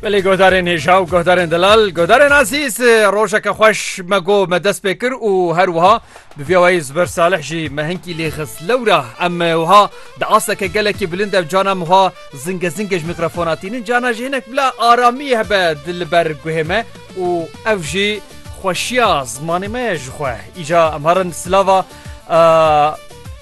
Belê godarên hêja û godarên delal godarên azîz rojeke xweş me go me dest pê kir û her wiha bi vîyawayî ziber salih jî me hinkî lê xist lewra em wiha di asteke gelekî bilind ev cana wiha zinge zinge ji mîkrofona tînin cana jî hinek bila aramî hebe di li ber guhê me û ev jî xweşiya zimanê me ye ji xwe îca em herin silava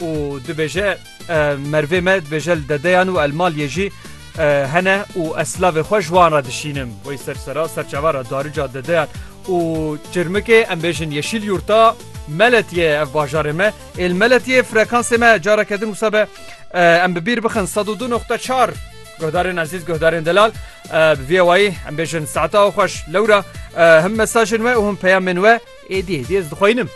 û dibêje mervê me dibêje li dedeyan û elmalyê jî hene û ez silavê xwe ji wan re dişînim wey ser sera serçava re darica dedeyan û çirmikê em bêjin yeşîl yûrta meletiye ev bajarê me êl meletiye frekansê me careke din wisa be em bi bîr bixin sed û du noxta çar Guhdarên ezîz guhdarên delal viyewayî em bêjin saeta xweş lewra him mesajên we û him peyamên we Êdî êdî ez dixwînim.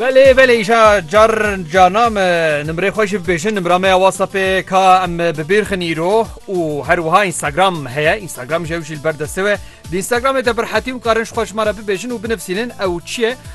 Belê belê îşa car cana me nimrê xwe jî bibêjin nimra me ya WhatsAppê ka em bibêrxin îro û her wiha Instagram heye Instagram ji ew jî li ber destê we di Instagramê de birhetî û karin ji xwe ji me re bibêjin û binivîsînin ew çi ye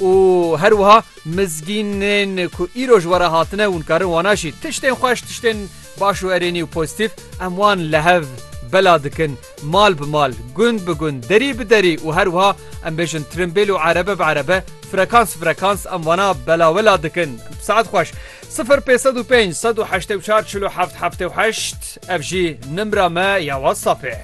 Û her wiha mizgînên ku îro ji we re hatine hûn karin wana jî tiştên xweş, tiştên baş û erênî û pozîtîf em wan li hev bela dikin mal bi mal, gund bi gund, derî bi derî û her wiha em bêjin tirimbêl û erebe bi erebe, frekans bi frekans em wana belawela dikin. Saet xweş. Sifir pênc sed û pênc sed û heştê û çar çil û heft heftê û heşt ev jî nimra me ya WhatsAppê.